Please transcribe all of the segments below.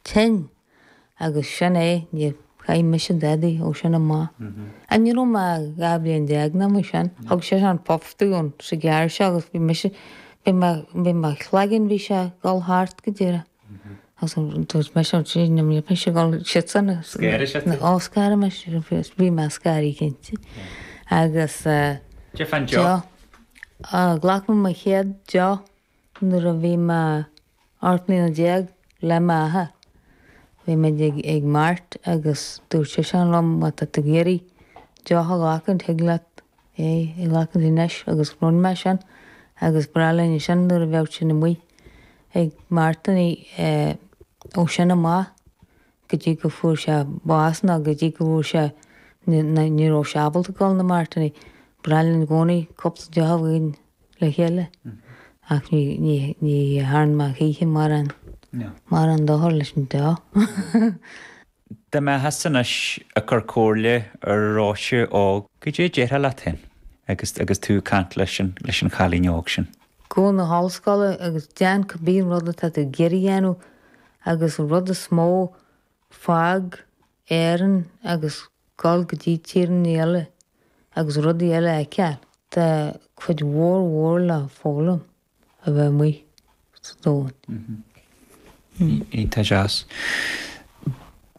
tinn, agus sin é, níor chaith mise dadaí ó sin amach. Ach ní raibh mé ach dhá bhliain déag ná mar sin. Thug seisean puff dúinn sa gcarr seo agus bhí mise, bhí mé, bhí mo chloigeann, bhí sé ag dul thart go díreach. Agus dúirt mise, ó Dia, níl mise ag dul siadsan a, Scanraigh sé thú? Ó, scanraigh mise roimhe, bhí mé scanraithe cinnte. Agus eh. Cad é fán deoch. Deoch. Ghlac mé mo chéad deoch nuair a bhí mé. 18 mbliana le m'athair. Bhí muid ag mart agus dúirt seisean liom má tá tú ag iarraidh deoch a ghlacaint thig leat é a ghlacaint anois agus rinn mé sin agus ba ghnách linn é sin nuair a bheadh sinn amuigh ag martannaí ó sin amach. go dtí go fuair sé bás ná go dtí go bhfuair sé, ná ní raibh sé ábalta dul na martannaí. Ba ghnách linn i gcónaí cúpla deoch againn le chéile ach ní, ní, ní thearn mé choíche mórán, mórán dochar leis an deoch. Dá mbeifeása anois ag cur comhairle ar Róise óg, cad é a déarfá leat féin agus, agus tú ag caint leis an, leis an chailín óg sin? Gabh 'na hollscoile agus déan cibé rud atá tú ag iarraidh a dhéanamh agus an rud is mó, fág Éirinn agus dul go dtí tíortha eile agus rudaí eile a fheiceáil. Tá cuid mhór mhór le foghlaim a bheith amuigh sa domhan. Tá seasca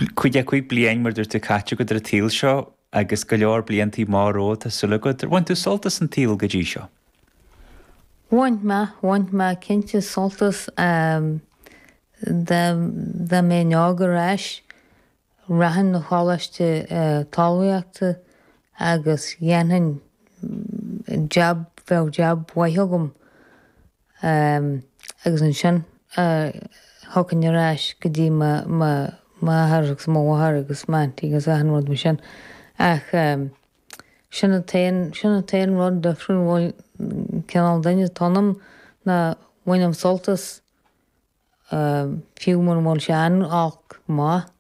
a cúig bliain, mar a dúirt tú caite, agat ar an tsaol seo agus go leor bliantaí maithe romhat, tá súil agam. Ar bhain tú sult as an tsaol go dtí seo? Bhain mé, bhain mé cinnte sult as dá mbeinn óg ar ais, rachainn na choláiste talmhaíochta agus dhéanfainn jab, bheadh jab mhaith agam agus ansin thiocfainn ar ais go dtí m'athair agus mo mháthair agus m'aunty agus achan rud mar sin ach. Sin an t-aon, sin an t-aon rud difriúil bhuel, cineál duine atá ionam ná bainim sult as fiú muna bhfuil sé iontach maith.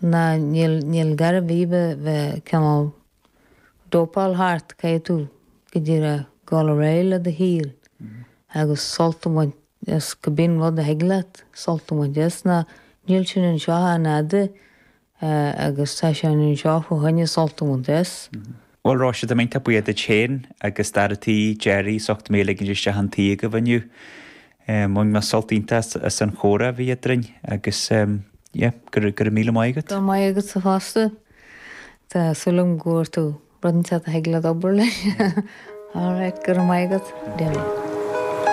Ná níl, níl gar ar bith bheith, bheith cineál dópáil thart, caithfidh tú go díreach dul ar aghaidh le do shaol agus sult a bhaint. As cibé rud a thig leat sult a bhaint as ná, níl sinn anseo an-fhada agus tá sinn anseo fá choinne sult a bhaint as. Bhuel, Róise, tá mé iontach buíoch duit féin agus d'fhear an tí, Gerry, as ucht mé a ligint isteach chun tí agaibh inniu. Bhain mé sult iontach as an chomhrá a bhí eadrainn agus, yeah, go raibh míle maith agat. Go raibh maith agatsa fosta. Tá súil agam go bhfuair tú rud inteacht a thig leat obair leis. All right, go raibh maith agat. Go raibh maith.